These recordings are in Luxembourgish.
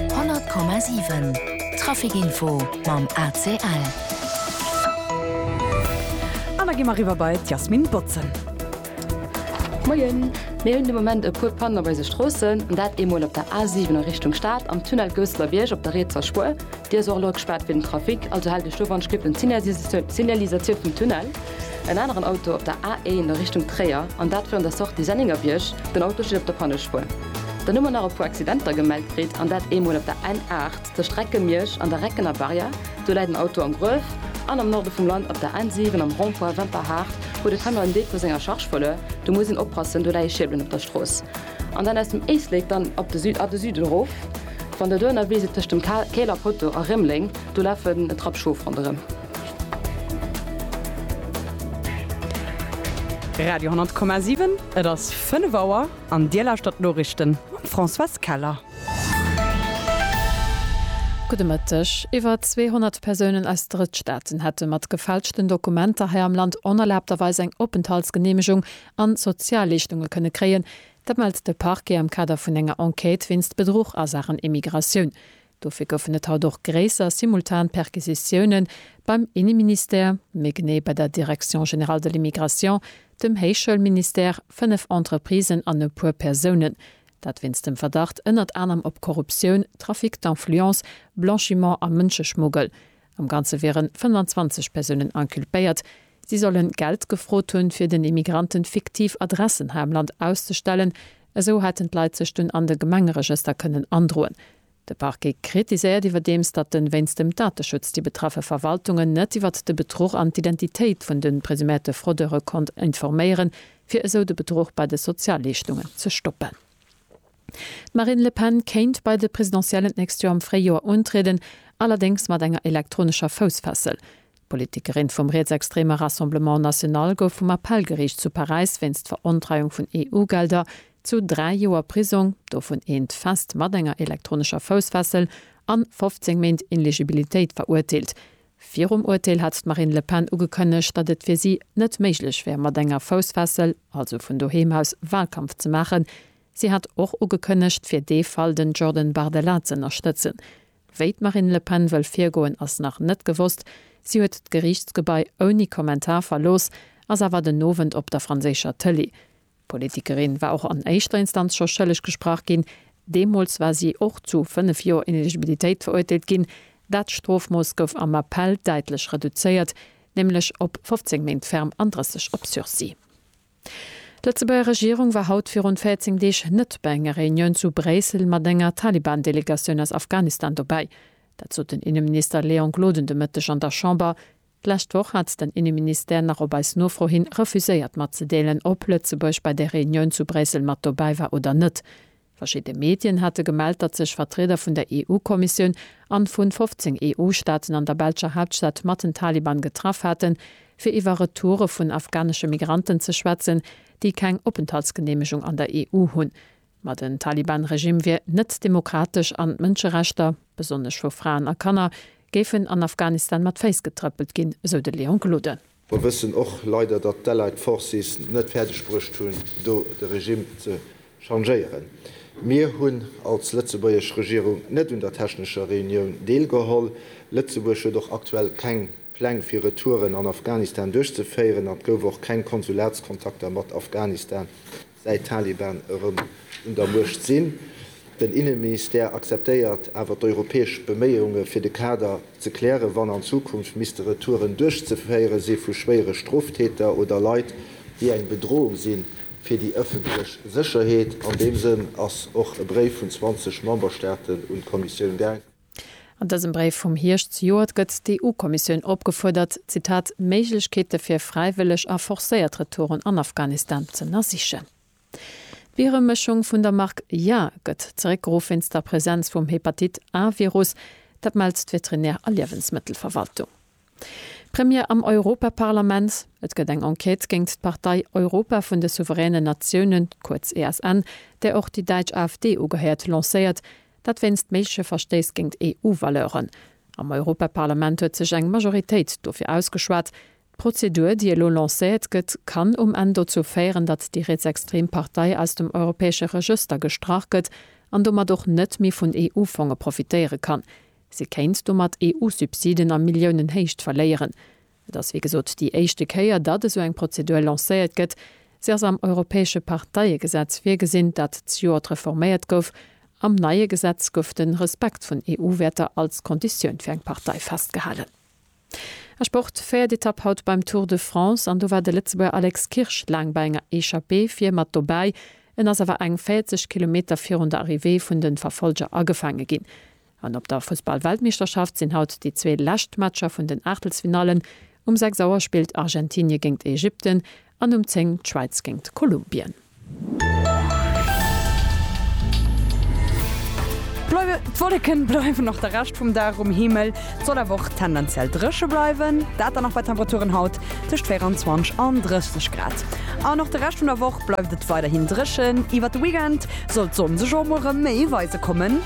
100,7 Trafic info mam ACL. An da gi mer riwwer bei d'Jasmine Botzen. Moien, mir hunn de Moment e puer Pannen op eise Stroossen, an dat eemol op der A7 a Richtung Stad, am Tunnel Gousselerbiërg op der rietser Spuer. Déi ass och elo gespaart fir den Trafic, also haalt Iech do dran, spillt un d'Signalisatioun vum Tunnel. En aneren Auto op der A1 a Richtung Tréier, an dat virun der Sortie Sennéngerbierg. Den Auto steet op der Pannespuer. Dann hu mer nach e puer Accidenter gemellt kritt, an dat eemol op der N8 zur Strecke Miersch an der Reckener Barrière, do läit en Auto am Gruef, an am Norde vum Land op der N7 am Rond-point Wemperhaart huet e Camion en Deel vu senger Charge verluer, do muss een oppassen, do leie Schierbelen op der Strooss. An dann aus dem Éislek dann op de Süd, a de Süden erof, wann Der do ënnerwee sidd tëscht dem Käler Poteau a Rémeleng, do lafen e Trapp Schof ronderëm. Radio 10,7, et ass 5 Auer. An Dir lauschtert d'Noriichten mam Françoise Keller. Gudde Mëtteg. Iwwer 200 Persounen aus Drëttstaaten hätte mat gefälschten Dokumenter hei am Land onerlaabterweis eng Openthaltsgeneemegung an Sozialleeschtunge kënne kréien. Dat mellt de Parquet am Kader vun enger Enquête wéinst Bedruch a Saachen Immigratioun. Dofir goufen et haut och gréisser simultan Perquisitiounen beim Inneministère, méi genee bei der Direction générale de l'immigration, dem Héichschoulministère, fënnef Entreprisen an e puer Persounen, dat wéinst dem Verdacht ënnert anerem op Korruptioun, Trafic d'influence, Blanchiment a Mënscheschmuggel. Am Ganze wieren 25 Persounen inculpéiert. Si sollen Geld gefrot hunn, fir den Immigranten fiktiv Adressen hei am Land auszestellen. Esou hätten d'Leit sech dunn an de Gemengeregëster kënnen androen. De Parquet kritiséiert iwwerdeems, datt en wéinst dem Dateschutz déi betraffe Verwaltungen net iwwert de Bedruch an d'Identitéit vun de presuméierte Fraudeure konnt informéieren, fir esou de Bedruch bei de Sozialleeschtungen ze stoppen. D'Marine Le Pen kéint bei de Presidentiellen d'nächst Joer am Fréijoer untrieden, allerdéngs mat enger elektronescher Foussfessel. D'Politikerin vum rietsextreeme Rassemblement National gouf vum Appellgeriicht zu Paräis wéinst Verontreiung vun EU-Gelder zu dräi Joer Prisong, dovun eent fest mat enger elektronescher Foussfessel, an 15 Méint Ineligibilitéit verurteelt. Virum Urteel hat d'Marine Le Pen ugekënnegt, datt et fir si net méiglech wär mat enger Foussfessel, also vun doheem aus, Walkampf ze maachen. Si hat och ugekënnegt, fir dee Fall den Jordan Bardella ze ënnerstëtzen. Wéi d'Marine Le Pen wëll virgoen, ass nach net gewosst. Si huet d'Geriichtsgebai ouni Kommentar verlooss, ass awer den Owend op der franséischer Tëlee. D'Politikerin war och an éischter Instanz scho schëlleg gesprach ginn. Deemools war si och zu fënnef Joer Ineligibilitéit verurteelt ginn. Dat Strofmooss gouf am Appell däitlech reduzéiert, nämlech op 15 Méint ferm an 30 op Sursis. D'Lëtzebuerger Regierung war haut virun 14 Deeg net bei enger Reunioun zu Bréissel mat enger Taliban-Delegatioun aus Afghanistan dobäi. Dat sot den Inneminister Léon Gloden de Mëtteg an der Chamber. D'lescht Woch hat den Inneministère nach op eis Nofro hin refuséiert matzedeelen, ob Lëtzebuerg bei der Reunioun zu Bréissel mat dobäi war oder net. Verschidde Medien hate gemellt, datt sech Vertrieder vun der EU-Kommissioun an vun 15 EU-Staaten an der belscher Haaptstad mat den Taliban getraff haten, fir iwwer Retoure vun afghanesche Migranten ze schwätzen, déi keng Openthaltsgeneemegung an der EU hunn. Ma den Taliban-Regime wier net demokratesch an d'Mënscherechter, besonnesch vu Fraen a Kanner, géifen an Afghanistan mat Féiss getrëppelt ginn, esou de Leon Gloden. Mer wëssen och leider, datt d'Allied Forces net fäerdeg bruecht hunn, do de Regime ze changéieren. Mir hunn als lëtzebuergesch Regierung net un der technescher Reunioun deelgeholl. Lëtzebuerg huet och aktuell keng Pläng fir Retouren an Afghanistan duerchzeféieren an et gouf och keng Konsulatskontakter mat Afghanistan säit d'Taliban erëm un der Muecht sinn. Den Inneministère akzeptéiert awer d'europäesch Beméiunge fir de Kader ze klären, wann an Zukunft misste Retouren duerchzeféiere si vu schwéiere Stroftäter oder Leit, déi eng Bedrohung si fir déi ëffentlech Sécherheet. An deem Sënn ass och e Bréif vun 20 Memberstaaten un d'Kommissioun gaang. An dësem Bréif vum Hierscht zejoert gëtt d'EU-Kommissioun opgefuerdert, Zitat, Méiglechkeete fir fräiwëlleg a forcéiert Retouren an Afghanistan z'ënnersichen. D'Bieremëschung vun der Mark Ya gëtt zeréckgeruff wéinst der Presenz vum Hepatit-A-Virus. Dat mellt d'Veterinär a Liewensmëttelverwaltung. D'Premiere am Europaparlament, Et gëtt eng Enquête géingt d'Partei Europa vun de souveränen Natiounen, kuerz ESN, där och déi däitsch AfD ugehéiert, lancéiert. Dat wéinst méigleche Verstéiss géingt EU-Valeuren. Am Europaparlament huet sech eng Majoritéit dofir ausgeschwat. D'Prozedur, déi elo lancéiert gëtt, kann um Enn dozou féieren, datt déi rietsextrem Partei aus dem europäesche Regëster gestrach gëtt an domat och net méi vun EU-Fonge profitéiere kann. Si kéint domat EU-Subsiden a Milliounenhéicht verléieren. Et ass wéi gesot déi éischte Kéier, datt esou eng Prozedur lancéiert gëtt. Se ass am europäesche Parteiegesetz virgesinn, dat d'Joert reforméiert gouf. Am neie Gesetz gouf de Respekt vun EU-Wäerter als Konditioun fir eng Partei festgehalen. A Sport, Véiert Etapp haut beim Tour de France an do war de Lëtzebuerger Alex Kirsch laang bei enger Echappée vir mat dobäi. En ass awer eng 40 Kilometer virun der Arrivée vun de Verfollger agefaange ginn. An op der Fussballweltmeeschterschaft sinn haut déi zwee lescht Matcher vun den Aachtelsfinallen. Um 6 Auer spillt Argentinie géint Ägypten an um 10 d'Schwäiz géint Kolumbien. D'Wolleken bleiwen och de Rescht vum Dag um Himmel, et soll awer och tendenziell dréche bleiwen, dat dann och bei Temperaturen haut tëscht 24 an 30 Grad. An och de Rescht vun der Woch bleift et weiderhin dréchen, iwwert de Weekend soll d'Sonn sech och mol rëm méi weise kommen.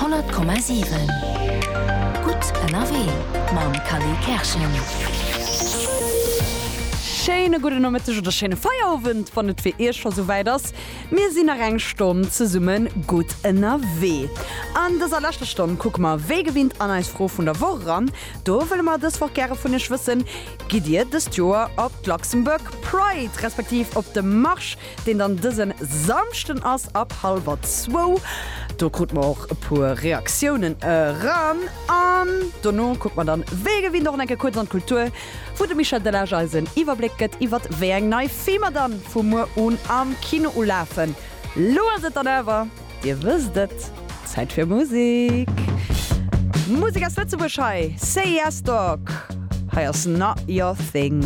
100,7 Gutt ënnerwee mam Kally Kerschen. Schéine gudden Nomëtteg oder schéine Feierowend, wann et fir Iech scho sou wäit ass. Mir sinn nach eng Stonn zesumme gutt ënnerwee. An dëser leschter Stonn kucke mer wéi gewinnt an eis Fro vun der Woch eran. Do wëlle mer dës Woch gäre vun Iech wëssen, Gitt Dir dëst Joer op d'Luxembourg Pride respektiv op de Marsch? deen dann dësen Samschden ass ab halwer zwou. Do krut mer och e puer Reaktiounen eran an dono kucke mer dann wéi gewinnt och enke kuerz an d'Kultur, wou de Michel Delage eis en Iwwerbléck gëtt iwwert wéi eng nei Filmer dann vu muer un am Kino ulafen. Lo ass et dann awer, dir wësst et, Zäit fir Musik. Musik aus Lëtzebuerg hei, Say Yes Dog, hei ass Not Your Thing.